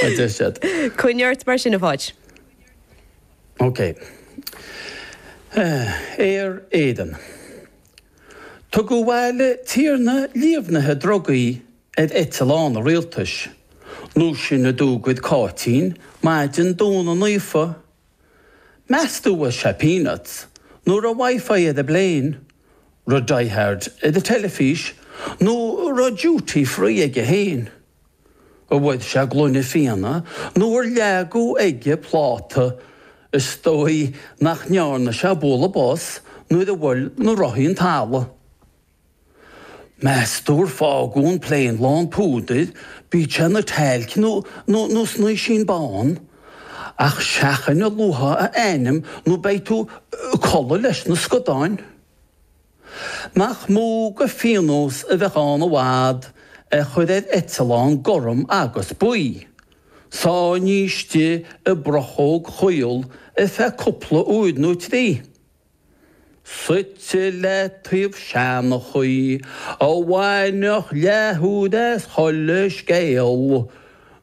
a deir siad. Coinnigh ort mar sin, a Pháid. OK. Aer Éireann. Tugadh abhaile tiarna líomhnaithe drugaí ar eitleán an rialtais, nó sin a dúirt Cáitín, maidin Domhnaigh Naofa. Meas tú an bhfuair sé peanuts nó raibh wifi ar an bplane, raibh Die Hard ar an teilifís nó raibh duty free aige féin. An bhfuair sé gloine fíona nó ar leagadh aige pláta, is dóigh nach ndearna sé bualadh bos nuair a bhuail na rothaí an talamh. Meas tú ar fágadh an plane lán púdair, bíodh sé ina talc nó nó snaoisín bán? Ach seachain a luafá a ainm nó beidh tú ag codladh leis na scadáin. Nach mó de phionós a bheadh ann i bhfad é a chur ar eitleán gorm agus buí, sáinnithe istigh i bprochóg chaol ar feadh cúpla uair nó trí, suite le taobh seanchaí a bhainfeadh leathuair as chuile scéal,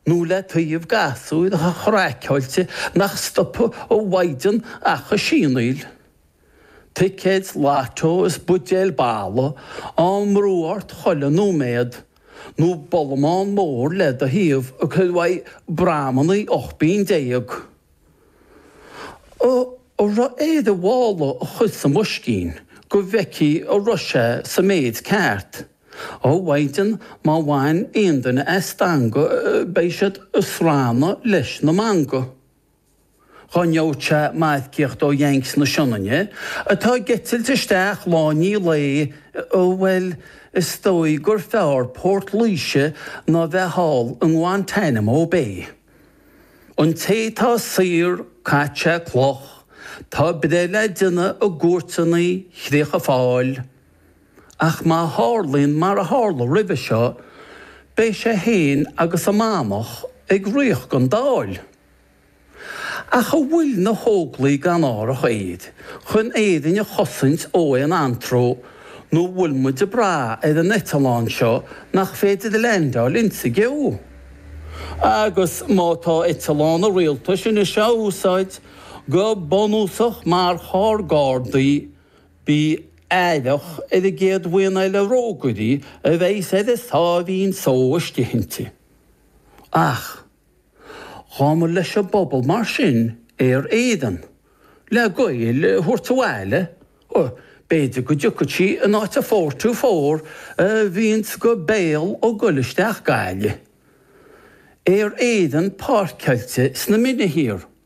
nó le taobh gasúir chraiceáilte nach stopfadh a Mhaighdean ach ag sianaíl? Ticéid Lotto is buidéil bolaidh á mbrú ort chuile nóiméad, nó bollamán mór le do thaobh ag cur uaidh bramannaí 18 bpingin. An raibh air a mhála a chur sa mboiscín go bhfeicfí an raibh sé sa méid ceart. Ó a Mhaighdean má bhain aon duine as stangadh beidh siad ag srannadh leis na mangaigh. Dá ngeobhadh sé marcaíocht ó Yanks na Sionainne, atá ag eitilt isteach lá i ndiaidh lae, bhuel, is dóigh gur fearr Port Laoise ná bheith thall i nGuantanamo Bay. An té tá saor, caitheadh sé cloch, tá breith le déanamh i gcúirteanna Chríocha Fáil. Ach má tharlaíonn mar a tharla roimhe seo, beidh sé féin agus an Manach ag rith don Dáil. Ach an bhfuil na hÓglaigh gan árthach aeir chun Éirinn a chosaint ó aon antró nó an bhfuil muid ag brath ar an eitleán seo nach féidir leaindeáil inti i gceo? Agus má tá eitleán an rialtais anois á úsáid go bunúsach mar charr gardaí, bí aireach ar an gcéad bhuíon eile rógairí a bheidh ar a sáimhín só istigh inti. Ach. Ghabhamar leis an bpobal mar sin Aer Éireann, le Gaeil a thabhairt abhaile, b'fhéidir go dtiocfadh sí in áit an four two four a bhíonns go béal ag goil isteach Gaillimh, Aer Éireann páirceáilte sna Mine thiar.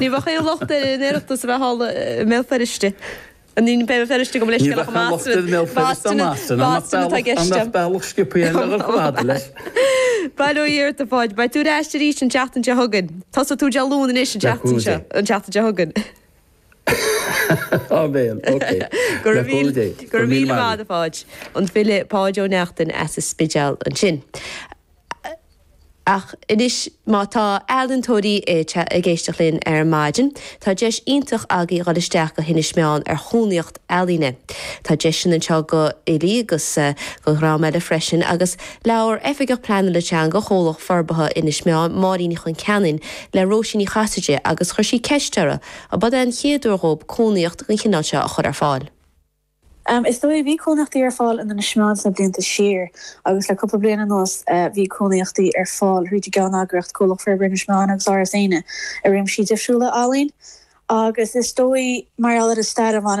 Ní bheadh aon locht ar an Oireachtas a bheith thall i mBéal Feirste. Ní mbeidh Béal Feirste agam leis, bealach an locht ar Bhéal Feirste an Astana, an mbeadh bealach scioptha eile agat chomh fada leis? Bail ó Dhia ort a Pháid, beidh tú ar ais arís an tseachtain seo chugainn. Tosóidh tú Dé Luain anois an tseachtain seo, an tseachtain seo chugainn. Áiméan, ok. Go raibh míle, go raibh míle maith a Pháid. An file Páid Ó Neachtain as an Spidéal ansin. Ach anois, má tá ealaíontóirí ag éisteacht linn ar maidin, tá deis iontach agaí dhul isteach go hInis Meáin ar chónaíocht ealaíne. Tá deis sin anseo go fhilí agus go dhream eile freisin, agus labhair Oifigeach Pleanála Teanga Chomhlacht Forbartha Inis Meáin, Máirín Ní Chonceanainn, le Róisín Ní Chasaide agus chuir sí ceist uirthi ab eod é an chéad uair dhóib cónaíocht den chineál seo a chur ar fáil. Is dóigh, bhí cónaíochtaí ar fáil in Inis Meáin sna blianta siar agus le cúpla bliain anuas bhí cónaíochtaí ar fáil thríd an gceanneagraíocht, Comhlacht Forbartha Inis Meáin agus Áras Éanna, i réimsí difriúla ealaín agus is dóigh, mar gheall ar an stair a bhaineann.